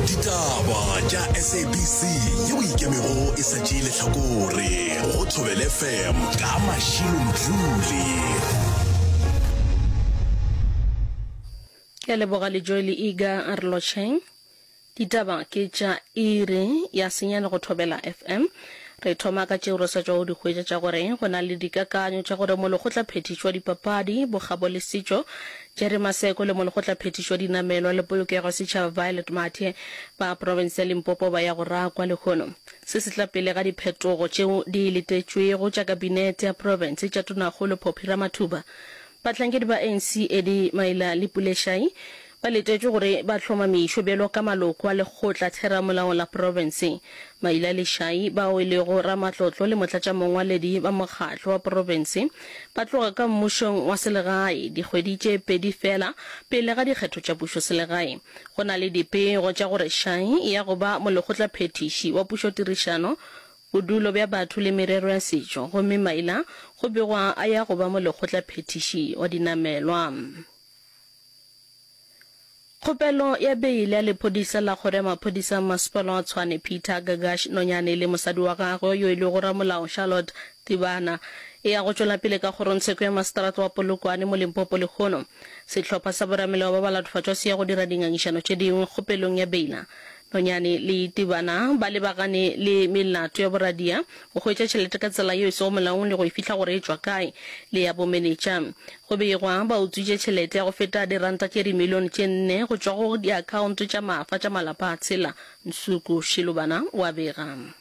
ditaba tša sabc ye o ikemego e sa tšee lehlakore go thobele fm ka mašilo mdluli ke a leboga le joele ega a re lotšheng ditaba ke tša iri ya senyane go thobela fm re thoma ka tšeo re sa tšwago di hwetša tša gore go na le dikakanyo tša gore molokgotla phethišo wa dipapadi bokgabo le setšo Jerry Maseko le Molekgotlaphethiši wa Dinamelwa le Polokego ya Setšhaba Violet Mathe ba profense ya Limpopo ba ya go rakwa lehono. Se se tla pele ga diphetogo tšeo di letetšwego tša Kabinete ya Profense tša Tonakgolo Phophi Ramathuba. Bahlankedi ba ANC Eddie Maila le Pule Shai ba letetšwe gore ba hlomamišwe bjalo ka maloko a Lekgotla Theramolao la Profense. Maila le Shai bao e lego ramatlotlo le motlatšamongwaledi ba mokgatlo wa profense ba tloga ka mmušong wa selegae dikgwedi tše pedi feela pele ga dikgetho tša pušoselegae. Go na le dipego tša gore Shai ya go ba molekgotlaphethiši wa pušotirišano, bodulo bja batho le merero ya setšo gomme maina go begwa a ya go ba molekgotlaphethiši wa dinamelwa. Kgopelo ya beile ya lephodisa la kgoro ya maphodisa a masepala wa Tshwane Peter Gagash Nonyane le mosadi wa gagwe yo e lego ramolao Charlotte Tibana e ya go tšwela pele ka kgorongtsheko ya maseterata wa Polokwane mo Limpopo lehono sehlopha sa boramelewa ba ba latofatšwa se ya go dira dingangišano tše dingwe kgopelong ya beila Nonyane le Tibana ba lebagane le melato ya boradia, go hwetša tšhelete ka tsela yeo e sego molaong le go e fihla gore e tšwa kae, le ya bomenetša. Go begwa ba utswitše tšhelete ya go feta diranta tše dimilione tše nne go tšwa go diakhaonto tša maafa tša malapa a tshela, Nsuku Shilubana o a bega.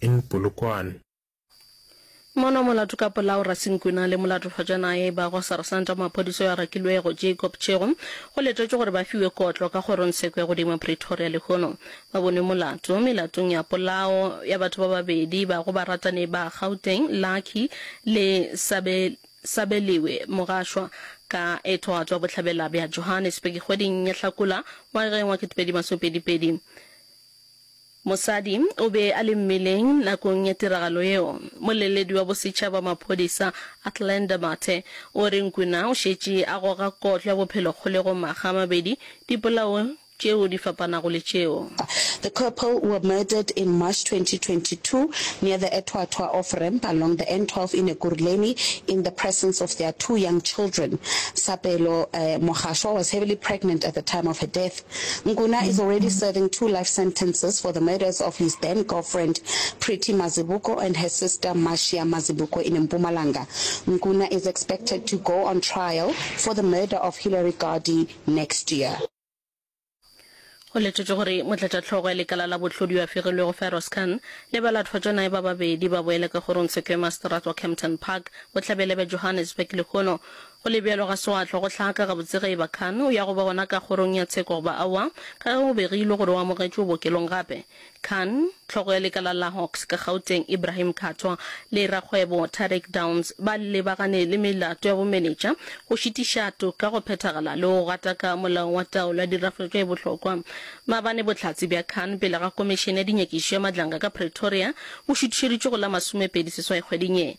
in Polokwane. Mono molato ka polao Rasinkwena le molatofhajanaye ba go Sarsanta wa maphodisa yo a rakilwego Jacob Chego go letetšwe gore ba fiwe kotlo ka kgorongsheko ya godimo Pretoria lehono ba bonwe molato melatong ya polao ya batho ba babedi ba go baratani ba Gauteng Lucky le Sabe Sabeliwe Mogashwa ka ethwato ya bohlabela bja Johannesburg kgweding ya Hlakola ngwageng wa 2022. Mosadi o be a le mmeleng nakong ya tiragalo yeo. Moleledi wa bosetšhaba wa maphodisa, Athlenda Mathe, o re Nkuna o šetše a goga kotlo ya bophelo kgolegong makga a mabedi dipolao tšeo di fapanago le tšeo. The couple were murdered in March twenty twenty two near the Ethwathwa off ramp along the N twelve in Ekurhuleni in the presence of their two young children. Sapelo Mogashoa was heavily pregnant at the time of her death. Nkuna is already serving two life sentences for the murders of his then girlfriend Pretty Mazibuko and her sister Marcia Mazibuko in Mpumalanga. Nkuna is expected to go on trial for the murder of Hillary Gardee next year. Go letetšwe gore motlatšahlogo ya lekala la bohlodi yo a fegilwego Firoz Khan le balatofaditšwa naye ba babedi ba boela ka kgorong Sequoia Masterate wa Kempton Park bohlabela bja Johannesburg lehono Go le bjalo, ga se gwa hlwa go hlaka gabotse ge e ba Khan o ya go ba gona ka kgorong ya tsheko goba aowa, ka ge go be go ilwe gore o amogetšwe bookelong gape. Khan, hlogo ya lekala la Hawks ka Gauteng, Ibrahim Khathwa, le rakgwebo Tariq Downs ba lebagane le melato ya bomenetša, go šitiša toka go phethagala le go gataka molao wa taolo ya dirafošo e bohlokwa. Maabane bohlatse bja Khan pele ga Komišene ya Dinyakišišo ya Madlanga ka Pretoria bo šuthišeditšwe go la masomepedi seswai kgweding ye.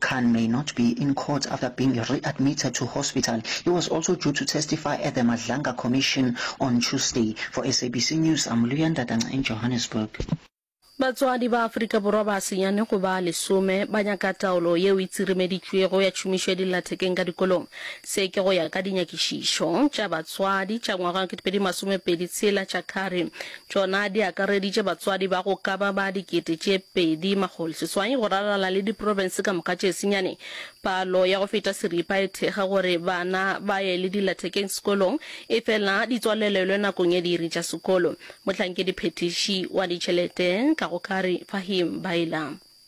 Khan may not be in court after being readmitted to hospital. He was also due to testify at the Madlanga Commission on Tuesday. For SABC News, I'm Luya Ndatana in Johannesburg. Batswadi ba Afrika Borwa ba senyane go ba lesome ba nyaka taolo yeo e tsiremeditšwego ya tšhomišo ya dillathekeng ka dikolong. Se ke go ya ka dinyakišišo tša batswadi tša ngwaga wa 2026 tša Kari Tšona di akareditše batswadi ba go ka ba ba dikete tše pedi makgolo seswai go rarala le diprofense ka moka tše senyane. Palo ya go feta seripa e thekga gore bana ba ye le dilathekeng sekolong efela di tswalelelwe nakong ya diiri tša sekolo. Mohlankedi-phethiši wa ditšhelete ka go Kari Fahim Bailah.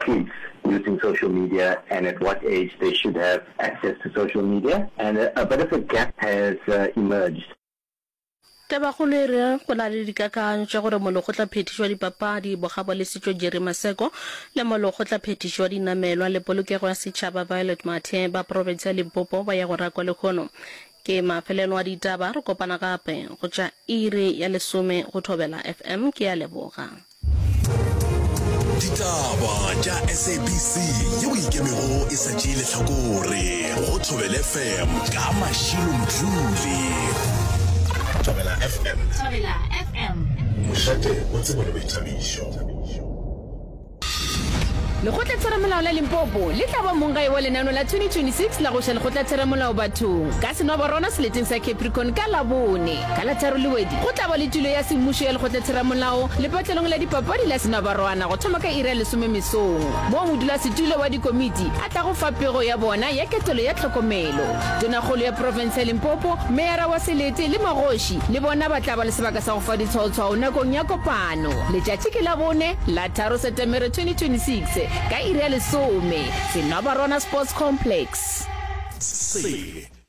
kids using social media and at what age they should have access to social media and a bit of a gap has emerged. Tabakgolo e re go na le dikakanyo tša gore molokgotlaphethiši wa dipapadi Bogabo Lesitšo Jerry Maseko le molokgotlaphethiši wa dinamelwa le polokego ya setšhaba Violet Mathe ba profense ya Limpopo ba ye go rakwa lehono ke mafelelo a ditaba. Re kopana gape go tša iri ya lesome go Thobela FM. Ke a leboga. ditaba tša sabc ye o ikemego e sa tšee lehlakore go thobele fm ka mašilo mdluli thobela fm thobela fm mošate o tsebo le boithabišo lekgotlatheramolao la limpopo le tla ba mong gae wa lenano la 2026 la go ša lekgotlatheramolao bathong ka senoborona seleteng sa capricorn ka labone Ka la tharo Lewedi go tla ba le tulo ya semmušo ya Lekgotlatheramolao lepatlelong la dipapadi la Senobarwana go thoma ka iri ya lesome mesong, moo modulasetulo wa dikomiti a tlago fa pego ya bona ya ketelo ya tlhokomelo. Tonakgolo ya profense ya Limpopo, meyara wa Selete le magoši le bona ba tla ba le sebaka sa go fa ditshwaotshwao nakong ya kopano. Letšatši ke Labone, la tharo Setemere 2026, ka iri ya lesome, Senobarwana Sports Complex. Sele.